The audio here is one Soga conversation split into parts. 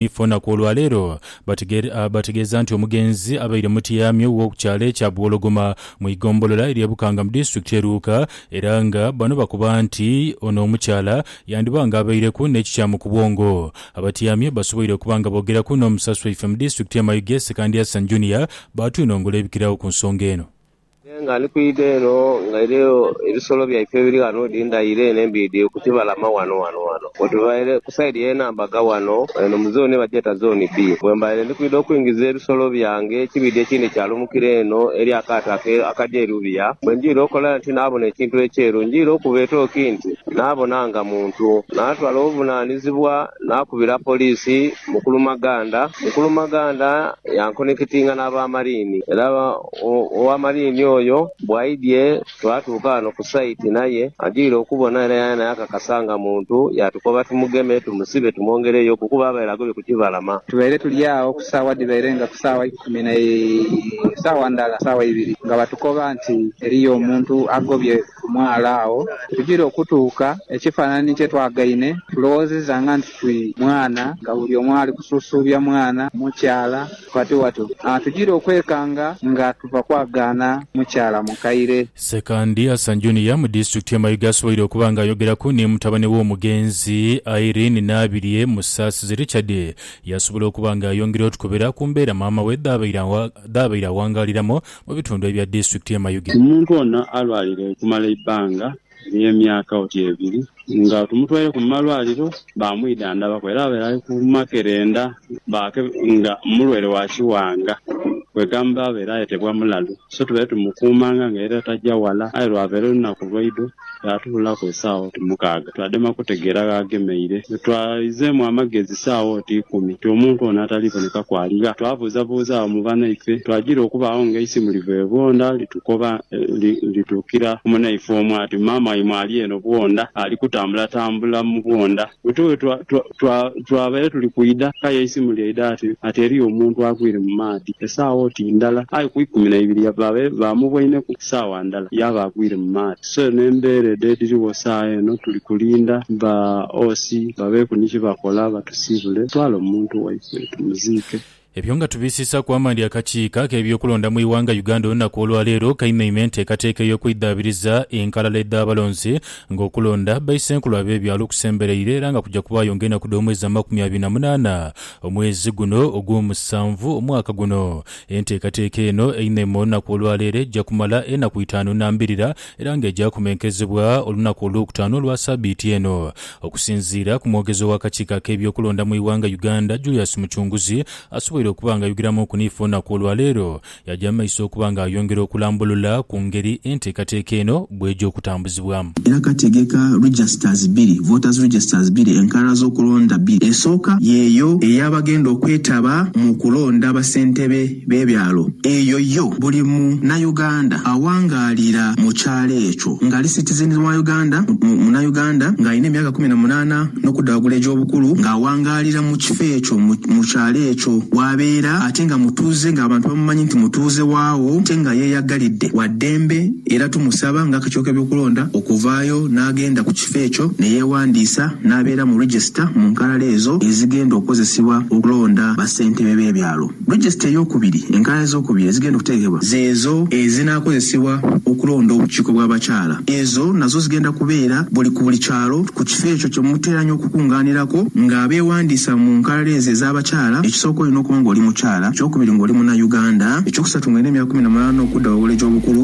Ifo na ku olwa leero bategeeza nti omugenzi abaire mutyamye wo ku kyalo ekya Buwologoma mu igombolola erye Bukanga mu disitulikiti ye Luuka era nga bano bakoba nti ono omukyala yandiba nga abaireku n'ekikyamu ku bwongo. Abatyamye basoboire okuba nga boogeraku n'omusasi waife mu disitulikiti ye Mayuge Sekandi Hassan Junior baatwinongola ebikiragho ku nsonga eno. Nze nga ndi kwidha eno nga eriyo ebisolo byaife ebiri ghano odi ndhaire eno embiidhi ku kibalama ghano ghano ghano wetubaire ku saidi y'e Nambaga ghano eno mu zooni bagyeta Zooni B. Bwembaire ndi kwidha okwingiza ebisolo byange ekibiidhi ekindhi kyalumukira eno eri akaato ake akagya e Lubya bwe ndhwire okola nti naabona ekintu ekyeru ndhwire okuba etooki nti naabona nga muntu naatwala obuvunaanizibwa naakubira poliisi Mukulu Maganda. Mukulu Maganda yankonikitinga n'aba Mariini era Ow'amaliini oyo bw'aidhie, twatuuka ghano ku saiti n'aye adhwire okubona era yaena yakakasa nga muntu, yaatukoba tumugeme, tumusibe tumwongereyoku kuba abaire agobye ku kibalama. Tubaire tuli agho ku saawa dhibaire nga ku saawa ikumi na saawa ndhala saawa ibiri nga batukoba nti eriyo omuntu agobye ku mwala agho. Tugire okutuuka, ekifanhanhi kye twagaine tulowoozezanga nti ti mwana nga buli omu ali kusuusuubya mwana, mukyala. Watu watu atujire okwekanga nga tuva kwagaana mukyala mukaire. Ssekandi Hassan Junior mu disitulikiti y'e Mayuge asoboire okuba nga ayogeraku ni mutabane w'omugenzi Irene Nabirye Musaasizi Richard yasobola okuba nga ayongera otukubira ku mbeera maama we dh'abaire awangaaliramu mu bitundu ebya disitulikiti y'e Mayuge. Omuntu ono alwalire okumala eibbanga Eri emyaka oti ebiri nga tumutwaireku mu malwaliro baamwidhandhabaku era abaire ali ku makerenda nga mulwaire wa kiwanga kwegamba abaire ayetebwa mulalu so tubaire tumukuumanga nga era taja wala aye lwavaire olunaku lwaidho yaatubulaku esaawa oti mukaaga twadema kutegeera gh'agemeire. Wetwaizeemu amagezi saawa oti ikumi nti omuntu ono atali bonekaku ali gha? Twabuuzabuuza agho mu banaife twagira okubaagho ng'eisimu liva ebwondha litukuba. Koba lituukira ku munaife omu ati, Maama waimwe ali eno bwondha, ali kutambulatambula mu bwondha. Wetuwe twabaire tuli kwidha, k'aye eisimu lyaidha ati, Ati eriyo omuntu agwire mu maadhi. Esaawa oti ndhala, aye ku ikumi na ibiri babaire bamubwaineku saawa ndhala, yaaba agwire mu maadhi. So eno embeera edh'edhirigho saagha eno, tuli kulindha ba OC babeeku ni ki bakola batusiibule, twale omuntu waife tumuziike. Ebyo nga tubisiisaaku amaani akakiiko ak'ebyokulonda mu ighanga Uganda olunaku olwaleero kaimeinma enteekateeka ey'okwidhaabiriza enkalala edh'abalonzi nga okulonda baisenkulu ab'ebyalo kusembereire era nga kuja kubaayo nga enaku dh'omwezi amakumi abiri na munaana omwezi guno ogwomusanvu omwaka guno. Enteekateeka eno einheinma olunaku olwaleero eja kumala enaku itaanu na mbirira era nga eja kumenkezebwa olunaku olwokutaanu olwa sabiiti eno. Okusinziira ku mwogezi ow'akakiiko ak'ebyokulonda mu ighanga Uganda Julius Muchunguzi asoboire okuba nga ayogeramuuku ni ife olunaku olwaleero, yaja mu maiso okuba nga ayongera okulambulula ku ngeri enteekateeka eno bweja okutambuzibwamu. Era kati gheka registers biri, voters registers biri, enkalala z'okulonda biri. Esooka yeeyo ey'abagenda okwetaba mu kulonda basentebe. be byalo eyo yo buli mu na Uganda awangaalira mu kyalo ekyo ngali citizens wa Uganda mu na Uganda nga alina emyaka kumi na munana nokudda wagulu egyobukulu nga awangaalira mu kifo ekyo mu kyalo ekyo wabeera ate nga mutuuze nga abantu bamumanyi nti mutuuze waawo ate nga yeyagalidde waddembe era tumusaba nga akakiiko kebyokulonda okuvaayo nagenda ku kifo ekyo neyewandiisa nabeera mu register mu nkalala ezo ezigenda okozesebwa okulonda ba ssentebe be byalo. Regisita ey'okubiri, Enkalala ez'okubiri ezigenda okuteekebwa zeezo ezinaakozesebwa okulonda obukiiko bw'abakyala. Ezo nazo zigenda kubeera buli ku buli kyalo ku kifo ekyo kye muteeranya okukungaanirako ng'abeewandiisa mu nkalala ezo ez'abakyala, ekisooka olina okuba ng'oli mukyala, eky'okubiri ng'oli Munauganda, eky'okusatu ng'olina emyaka kumi na munaana okudda waigulu egy'obukulu.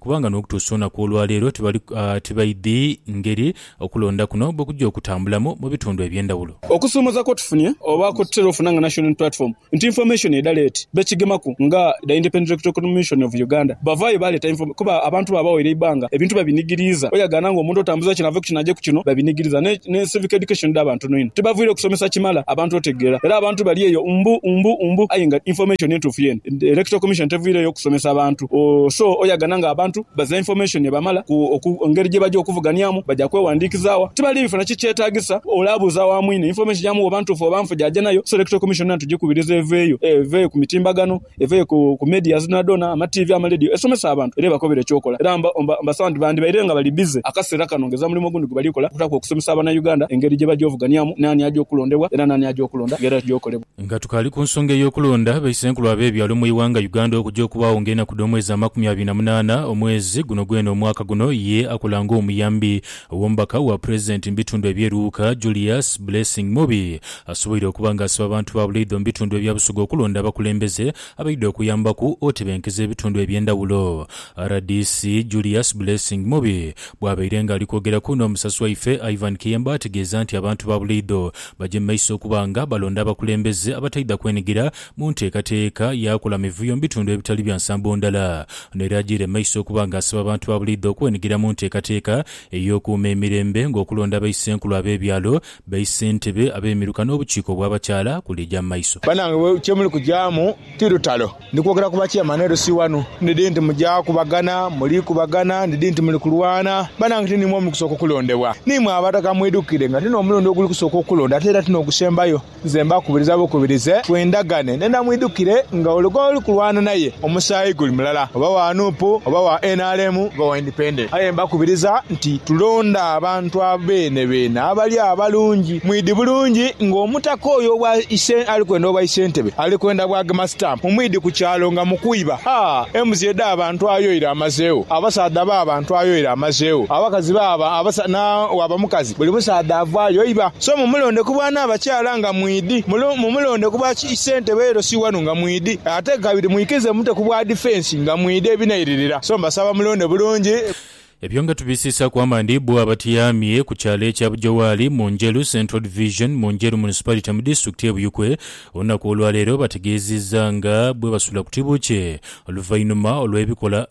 kubanga n'okutuusa olunaku olwa leero tibali tibaidhi ngeri okulonda kuno bwe kujja okutambulamu mu bitundu eby'endhawulo. Okusoomoza kwotufunye oba kwetutera ofuna nga Nation Unity Platform nti information edha late bekigemaku nga the Independent Electoral Commission of Uganda bavaayo baleeta inform kuba abantu baabawaire eibanga ebintu babinigiriiza oyagaana nga omuntu otambuza kino ave ku kino aje ku kino babinigiriza ne ne civic education dhaba ntono inho tibavwire kusomesa kimala abantu otegeera era abantu bali eyo mbu mbu mbu aye nga information entuufu yeene Electoral Commission tevwireyo kusomesa bantu So oyagana nga abantu baza information ebamala ku ngeri gyebaja okuvuganiamu baja kwewandikiza wa? Tibali bifuna kikyetagisa olabuuza wa mwine information yamu oba ntuufu oba nfu gyaja nayo so electoral commission yona tugikubiriza eveeyo eveeyo ku mitimbagano eveeyo ku medias dhonadhona ama TV ama ledio esomese abantu era ebakobere ekyokola era mbasaba nti bandibaire nga bali busy akaseera kano nga ezamulimo ogundi gwebalikola okutaku okusomesa abana Uganda engeri gyebaja ovuganiamu naani aja okulondebwa era naani aja okulonda nga era kyokolebwa. Nga tukaali ku nsonga ey'okulonda baisenkulu ab'ebyalo mu ighanga Uganda okuja okubaagho nga enaku dh'omwezi amakumi abiri na munaana omwezi guno gwene omwaka guno, ye akola nga omuyambi ow'omubaka wa Pulezidenti mu bitundu ebye Luuka, Julius Blessing Mubi asoboire okuba nga asiba abantu ba Buleidha mu bitundu ebya Busoga okulonda abakulembeze abaidha okuyambaku otebenkeza ebitundu eby'endhawulo. Rdc Julius Blessing Mubi bwabaire nga ali kwogeraku n'omusasi waife Ivan Kiyemba ategeeza nti abantu ba Buleidha Baje mu maiso okuba nga balonda abakulembeze abataidha kwenhigira mu nteekateeka ya kola mivuyo mu bitundu ebitali bya nsambo ndala. Ono era agiire mu maiso okuba nga asaba abantu ba buliidho okwenhigira mu nteekateeka ey'okuuma emirembe ng'okulonda abaisenkulu ab'ebyalo, baisentebe, ab'emiruka n'obukiiko obw'abakyala kulija mu maiso. Banange kye muli kujaamu ti lutalo. Ndi kwogera ku bakyamanhi LC wano. Ndi dhi nti muja kubagana, muli kubagana, ndi dhi nti muli kulwana. Banange ti niimwe muli kusooka okulondebwa. Niimwe Abataka mwidhukire nga ti n'omulundi oguli kusooka okulonda ate era ti n'ogusembayo. Nze mbakubiriza bukubirize twendhagane nena mwidhukire nga ole gwoli kulwana naye omusaayi guli mulala oba wa nup oba wa nrm oba wa. Aye mbakubiriza nti tulonde abantu abeene beene abali abalungi. Mwidhi bulungi nga omutaka oyo obwa isente ali kwenda obwa isentebe ali kwenda bwagema stamp mu mwidhi ku kyalo nga mukwiba. Ha! Embuzi edha bantu ayoire amazeegho, abasaadha ba bantu ayoire amazeegho, abakazi ba abasaadha na waba mukazi buli musaadha avaayo iba. So mumulonde ku bwa nabakyala nga mwidhi, mumulonde ku bwa isentebe LC wanu nga mwidhi ate kabiri mwikirize mumute ku bwa defence. Nga mwidha ebinairirira, so mbasaba mulonde bulungi. Ebyo nga tubisiisaku amaani bbo abatyamye ku kyalo ekya Bujowaali mu Njeru Central Division mu Njeru Municipality mu Disitulikiti ye Buyikwe olunaku olwaleero bategeezizza nga bwebasula ku tibukye oluvainuma olwebikola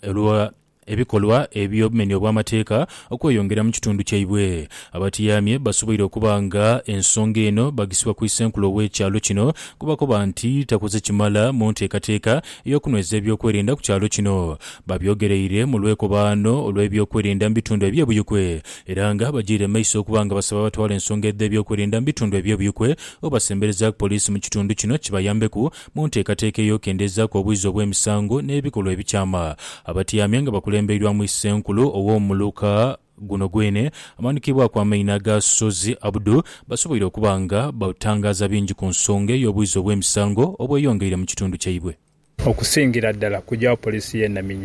ebikolwa ebyobumenya obwamateeka okweyongera mu kitundu kyaibwe. Abatyaamye basoboire okuba nga ensonga eno bagisiba ku Isenkulu ow'ekyalo kino kubakoba nti takoze kimala mu nteekateeka ey'okunweza ebyokwerinda ku kyalo kino. Babyogeraire mu lwekobaano olw'ebyokwerinda mu bitundu eby'ebuyukwe era nga bagyaire mu maiso okuba nga basaba abatwala ensonga edh'ebyokwerinda mu bitundu eby'ebuyukwe obasemberezaaku poliisi mu kitundu kino kibayambeku Mu nteekateeka ey'okendezaaku obwizi obw'emisango n'ebikolwa ebikyama, abatyamya nga bakulembeirwamu Issenkulu ow'omuluka guno gwene amanhukibwaku amaina aga Ssozi Abdu basoboire okuba nga batangaaza bingi ku nsonga ey'obwizi obw'emisango obweyongeire mu kitundu kyaibwe. Okusingira ddala kugyawo poliisi y'e Naminyo.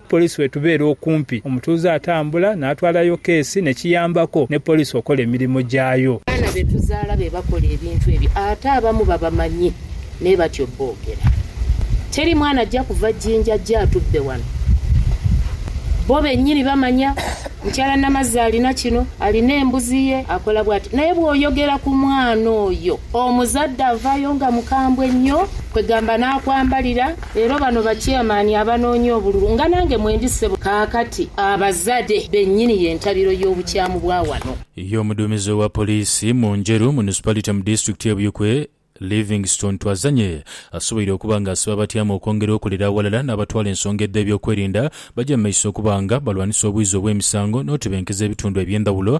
Poliisi bwetubeera okumpi, omutuuze atambula n'atwalayo keesi ne kiyambako ne poliisi okola emirimo gyayo. Abaana be tuzaala be bakola ebintu ebyo ate abamu babamanyi naye batyo boogera. Teri mwana ajja kuva Jinja ajje atubbe wano. Bo bennyini bamanya. Mukyala Namazzi alina kino, alina embuzi ye, akola bw'ati. Naye bw'oyogera ku mwana oyo, omuzadde avaayo nga mukambwe nnyo kwegamba n'akwambalira. Leero bano ba Chairman abanoonya obululu nga nange mwendi ssebo kaakati. Abazade benyini yentabiro yobukyamu bwa wano. Ye omuduumizi owa poliisi mu Njeru Municipality mu disitulikiti ye Buikwe, Livingstone Twazanye asoboire okuba nga asiba abatyaama okwongera okolera aghalala n'abatwala ensonga edh'ebyokwerinda bagye mu maiso okuba nga balwanisa obwizi obw'emisango n'otebenkeza ebitundu eby'endhawulo